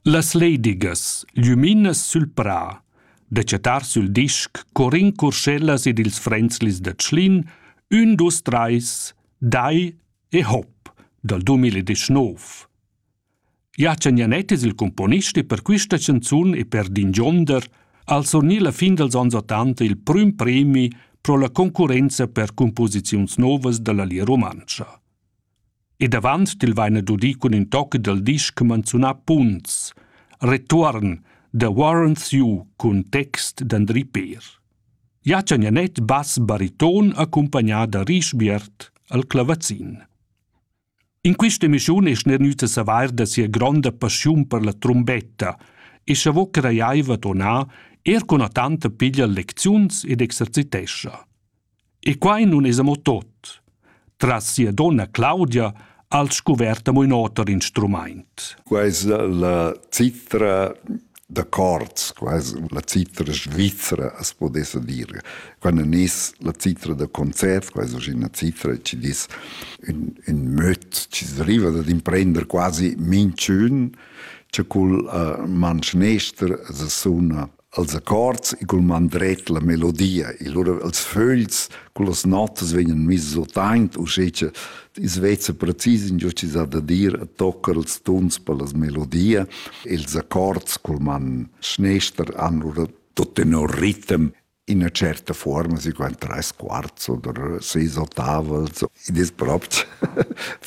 Las leidigas, glüminas sül prà, da chattar sül disc Corin Curschellas ed ils Fränzlis da Tschlin, ün, dus, trais, dai e hop dal 2019. Jachen Janett es il cumponist e per quista chanzun e per d'ingionder al surgnir la fin dals ans ottanta il prüm premi pro la concurrenza per cumposiziuns novas da la Lia Rumantscha. ed avant il vaina dudi cun ün toc dal disch manzunà Punts, Retuorn, The Warrants You cun text d'Andri Peer. Jacen Janet bass bariton accompagnà da Rischbiert al clavazin. In questa emissione es gnüta savair da sia gronda passiun per la trombetta e cha vo crajaiva tonà er cun tanta piglia lecziuns ed exercitescha. E quai nun es amo tot. Tras sia donna Claudia ha'l scuvert amo ün oter instrumaint. Quai es la citra da cords, quai es la citra svizra as pudessa dir. Quando es la citra da concert, quai es uschè üna citra chi dis ün, ün möd chi deriva dad imprender quasi minchün, cha cul uh, manschnester as suna als accords e cul man dret la melodia e lura els fögls cun las notas vegnan miss otaint uschè cha i's vezza precis ingio chi s'ha da dir e toccar ils tuns per las melodia e ils accords cul man schnester han lura tut tenor ritem in üna certa forma, si qua in tres quarts oder seis ottavels. Id es propi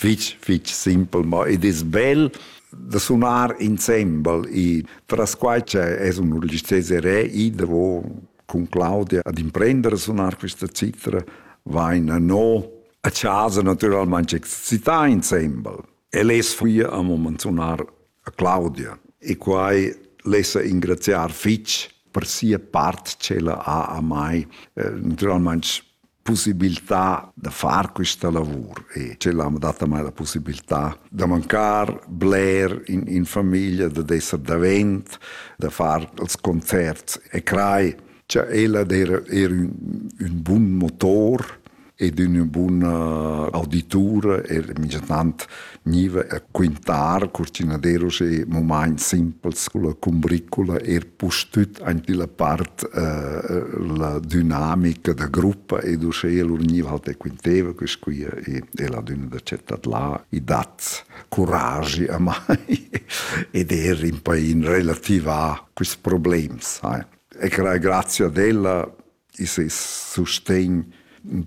fich, fich simpel, ma id es bel da sunar insembel e tras quai che es un Ulysses Herré i davo cun Claudia ad imprendere a sunar questa citra vaina no a casa naturalmente excità insembel. El es qui a moment sunar a Claudia e quai lessa ingraziar fitch per sia part ch'ella ha a mai. Eh, naturalmente possibilità da far questa lavur e ce l'hanno data mai la possibilità da mancare bler in, in famiglia, da essere davent, da fare els concerts e crai. Cioè, ella era, era un, un buon motor ed una buona auditura e minchtant gniva a quintar cur ch'ün ad era uschè mumaints simpels culla cumbricula eir pustüt aint illa part la dynamica da gruppa ed uschè lur gniva halt e quinteva quist qui e la dünna da chattar là i dat curagi amai ed eir ün pa in relativà quists problems, sai. E grazie ad ella i ses sustegn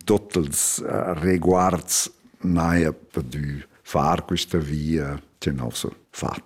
tottels uh, reguards n'haja pudü far quista via tenor suo fat.